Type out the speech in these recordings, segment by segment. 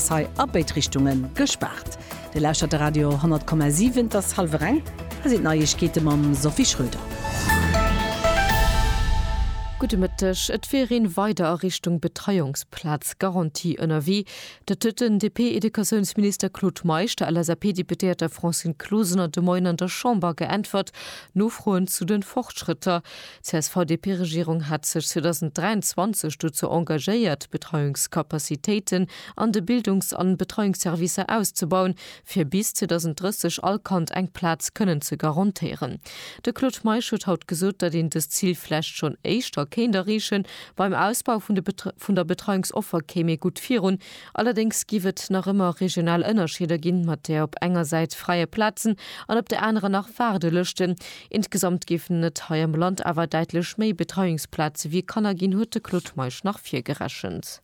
Hei a béid Richtunge gespaart. Dir lauschtert de Radio 10,7. Et ass hallwer eng. Hei sinn d'Neiegkeete mam Sophie Schröder. Gudde Mëtteg. Et wier een weider a Richtung Betreiungsplaz Garantie ënnerwee. Dat huet den DP-Educatiounsminister Claude Meisch der LSAP-Deputéierter Francine Closener de Moien an der Chamber geäntwert. Nofroen zu de Fortschrëtter, D'CSV-DP-Regierung hat sech 2023 dozou engagéiert, d'Betreiungscapacitéiten an de Bildungs an Betreiungsservicer auszebauen, fir bis 2030 all Kand eng Plaz kënnen ze garantéieren. De Claude Meisch huet haut gesot, datt een dëst Zil vläicht schonn éischter kéint erreechen. Beim Ausbau vun de vun der Betreiungsoffer kéim ee gutt virun. Allerdéngs géif et nach ëmmer regional Ënnerscheeder ginn, mat där op enger Säit fräie Plazen an op der anerer nach Waardelëschten. Insgesamt géifen et hei am Land awer däitlech méi Betreiungsplaze wéi Kanner ginn, huet de Claude Meisch nach virgerechent.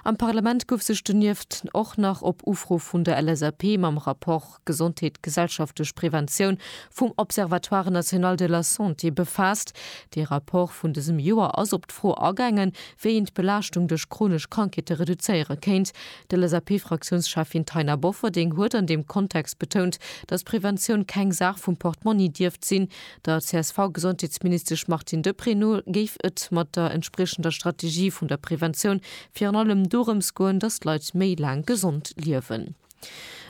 Am Parlament gouf sech donieft och nach op Ufro vun der LSAP mam Rapport Gesondheet, gesellschaftlech Preventioun vum Observatoire national de la santé befaasst. Dee Rapport vun dësem Joer ass op d'Fro agaangen, wéi een d'Belaaschtung duerch chronesch Krankheete reduzéiere kéint. D'LSAP-Fraktiounscheffin Taina Bofferding huet an deem Kontext betount, datt Preventioun keng Saach vum Portmonni dierft sinn. Der CSV-Gesondheetsministesch Martine Deprez no géif et mat der entspriechender Strategie vun der Preventioun virun allem dorëms goen, datt d'Leit méi laang gesond liewen.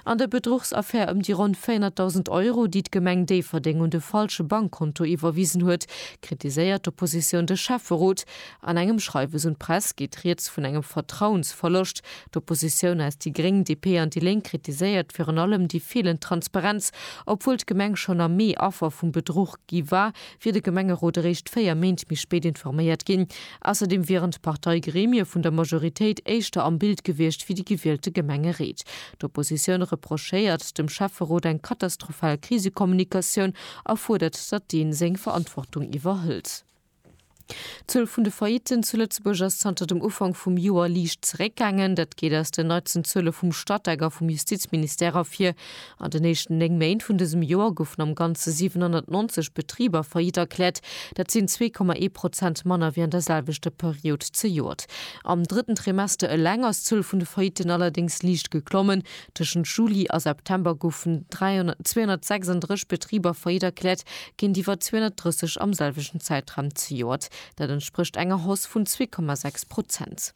An der Bedruchsaffär ëm déi ronn 400.000 Euro, déi d'Gemeng Déifferdeng un de falsche Bankkonto iwwerwisen huet, kritiséiert d'Oppositioun de Schäfferot, An engem Schreiwes un d'Press geet rieds vun engem Vertrauensverloscht. D'Oppositioun aus déi Gréng, DP an déi Lénk kritiséiert virun allem déi feelend Transparenz, obwuel d'Gemeng schonn am Mee Affer vum Bedruch gi war, wier de Gemengerot eréischt 4 Méint méi spéit informéiert ginn. Ausserdeem wieren d'Parteigremie vun der Majoritéit éischter am Bild gewiescht wéi déi gewielte Gemengereet. D'Oppositioun reprochéiert dem Schäfferot eng katastrophal Krisekommunikatioun a fuerdert, datt deen seng Verantwortung iwwerhëlt. D'Zuel vun de Faillitten zu Lëtzebuerg ass zanter dem Ufank vum Joer liicht zeréckgaangen. Dat geet aus den neitsten Zuele vum Statec a vum Justizministère ervir. An den éischten néng Méint vun dësem Joer goufen am Ganze 790 Betriber faillite erkläert. Dat sinn zwee Komma ee Prozent manner wéi an der selwechter Period zejoert. Am drëtten Trimester eleng ass d'Zuel vun de Faillitten allerdéngs liicht geklommen. Tëschent Juli a September goufen 236 Betriber faillite erkläert, géintiwwer 230 am selwechten Zäitraum zejoert. Dat entsprécht enger Hausse vun 2,6 Prozent.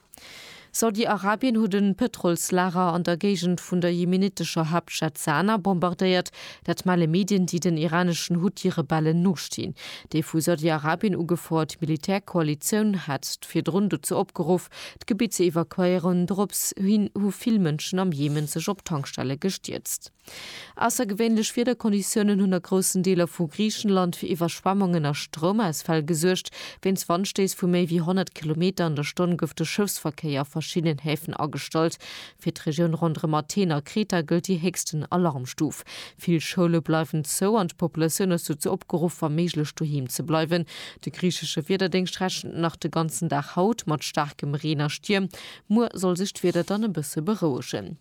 Saudi-Arabien huet e Pëtrolslager an der Géigend vun der jemenitescher Haaptstad Sanaa bombardéiert. Dat melle Medien, déi den iraneschen Huthi-Rebellen nostinn. Déi vu Saudi-Arabien ugefouert Militärkoalitioun hat virdrun dozou opgeruff, d'Gebitt ze evakuéieren. Dorops hin hu vill Mënschen am Jemen sech op Tankstelle gestierzt. Aussergewéinlech Wiederkonditiounen hunn a groussen Deeler vu Griichenland fir Iwwerschwemmungen a Stroumausfäll gesuergt. Wéinst Wandstéiss vu méi wéi 100 Kilometer an der Stonn gouf de Schëffsverkéier a verschiddenen Häfen agestallt. Fir d'Regioun ronderëm Athen a Kreta gëllt déi héchsten Alarmstuf. Vill Schoule bleiwen zou an d'Populatioun ass dozou opgeruff, wa méiglech doheem ze bleiwen. De griichesche Wiederdéngscht rechent nach de ganzen Dag haut mat staarkem Reen a Stierm. Muer soll sech d'Wieder dann e bësse berouegen.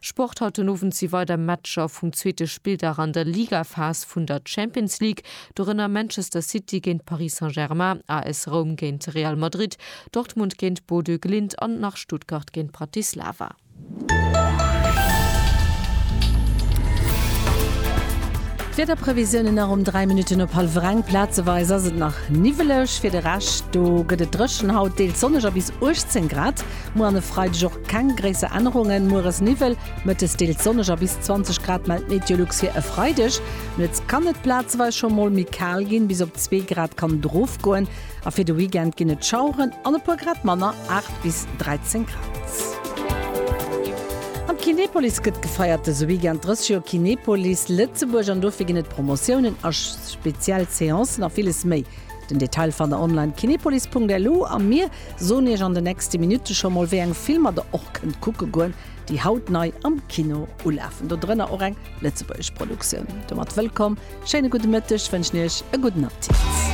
Sport, Haut den Owend si weider Matcher vum zweete Spilldag an der Ligaphas vun der Champions League, dorënner Manchester City géint Paris Saint-Germain, AS Roum géint Real Madrid, Dortmund géint Bodø Glimt an nach Stuttgart géint Bratislava. D'Wiederprevisiounen nach um 3 Minutten op hallwer eng, Plazeweis ass et nach niwweleg, fir de Rescht do gëtt et dréchen. Haut deels sonneg a bis 18 Grad. Muer an e Freideg och keng gréisser Ännerungen, mueres Niwwel, mëttes deels sonneg a bis 20 Grad mellt Meteolux fir e Freideg. Nuets kann et plazeweis scho mol méi kal ginn, bis op zwee Grad kann et erofgoen. A fir de Weekend ginn et Schaueren an e puer Grad manner, 8 bis 13 Grad. An d'Kinepolis gëtt gefeiert dëse Weekend, 30 Joer Kinepolis Lëtzebuerg an dofir ginn et Promotiounen a speziell Seancen a villes méi. Den Detail fannt der online, kinepolis.lu a mir soen iech an de nächste Minutte scho mol wéi eng Filmer der och kënnt kucke goen, déi haut nei am Kino ulafen. Do drënner och eng lëtzebuergesch Produktioun. Domat wëllkomm, schéine gudde Mëtteg wënschen iech, e gudden Appetit.